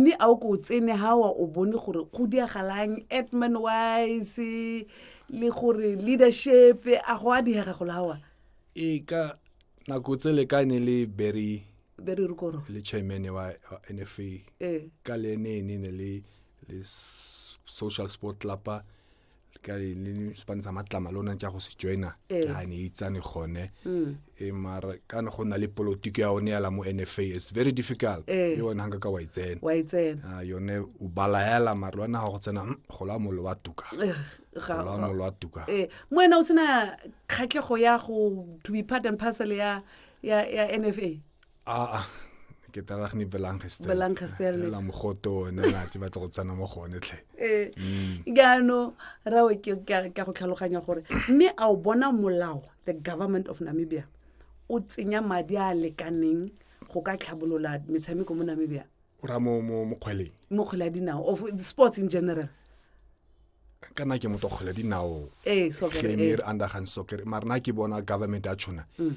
mme a o ko o tsene ga wa o bone gore go diagalang atman wise le gore leadership a go a diega go lawa ee ka nako tse le ka ne le berry berry rukoro le chairman wa nfa ee ka le ene ene ne le le social sport club ka e ne sepane sa matlama le ona ke ya go se joina ke a ne itsane gone e mara ka ne go na le politiki ya one yala mo nfa it's very difficult e one hanga ka wa itsena wa itsena yone o bala yala mara lwana ga go tsena go la molo wa tuka la molo wa tuka eh mo ena o tsena khatlego ya go to be part and parcel ya ya ya nfa a ke tala gni belangestel belangestel la mogoto ona la tse batla go tsana mo gone tlhe eh gano mm. rawe ke ka go tlhaloganya gore mme a o bona molao the government of namibia o tsenya madi a lekaneng go ka tlhabolola metshameko mo namibia o ra mo mo mo kgweleng mo kgwela dinao of sports in general kana ke motho kgwela dinao eh soccer eh under hand soccer marna ke bona government a tshona mm.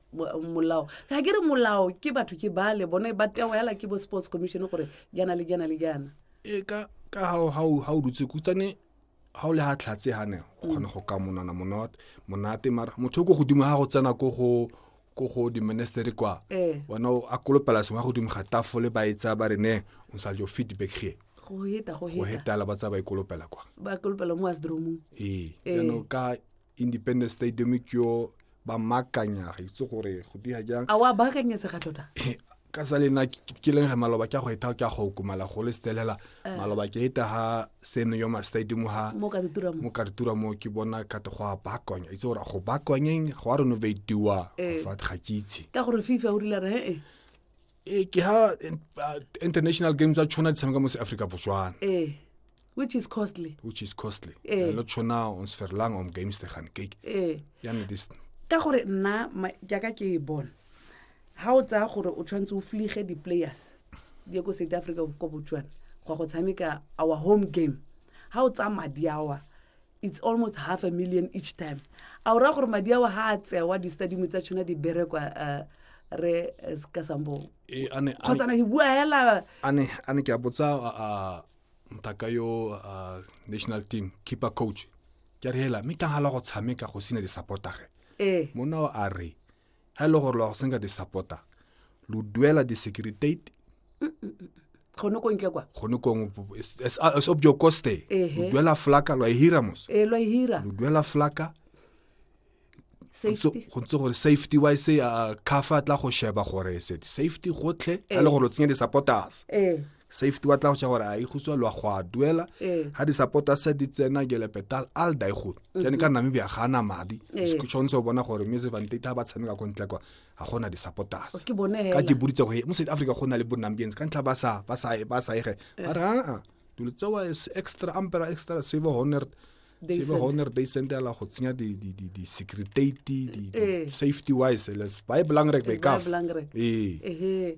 molao ga ke re molao ke batho ke bale bone ba tewa yala ke bo sports commission gore jana le jana le jana e ka ka ha ha ha o dutse kutsane ha o le ha tlhatse ha ne o kgona go ka monana monate monate mara motho go godimo ha go tsena ko go ko go di ministry kwa eh. wena o a kolopela sengwe go dimo ga tafole ba e tsaya ba re ne o sa jo feedback here go heta go heta go heta la ba tsaya ba ikolopela e kwa ba ikolopela e mo asdromong ee eh. ka independence stadium ke yo ba makanya ga itse gore go dia jang a wa baakanyetse ga tota ka sa lena ke ke leng ge maloba ke a go eta ke a go kumala go le stelela maloba ke eta ha seno yo ma stadium ha mo ka ditura mo mo ka ditura mo ke bona ka te go a bakonya itse gore go bakonyeng go a renovatiwa Eh. fa ga ke itse ka gore fifa o rile re ee ee ke ha in- uh, international games tsa tshwana di tshameka mo se africa botswana ee which is costly which is costly Eh. lo tshwana on sferlang om games te gan cake ee yane this ka gore nna ma- jaaka ke e bona ga o tsaya gore o tshwanetse o flige di-players di ye ko south africa ko botswana go ya go tshameka our home game ga o tsaya madi awa it's almost half a million each time a o raya gore madi ao ga a tsewa di-stadium tsa tshona di berekwa uh, re uh, ka sambong eh, kgotsa na bua hela a ne ke a botsa uh, mtaka yo national team keeper coach ke re hela mme tanghala go tshameka go sena di-supportage ee. mona o a re ga e le gore lo ya go senka di-supporter lo duela di-securitate gone ko ntle kwa gone kong sob jo coste Ehe. lo duela flaka lo a e hira mos e lo e hira lo duela flaka safety go ntse gore safety wise uh, cafa tla go sheba gore se safety gotlhe a le gore o tsenye di-supporters ee safety wa tla go gore a ikguswa lwa go a duela ga di-supporter se di tsena gelepetal al daigone jane ka namibia ga na madi tshwanetse o bona gore music vantete ga ba tshameka ko ntle kwa ga gona di-supporters ka ke boditse go mo south africa go na le bonambians ka ntlha ba sa ege ba re aa dilo tsewa extra ampera extra save honor sebe honor day sente ala go tsenya di-secretate di-safety wise les ba e belang rek ba e kafa ee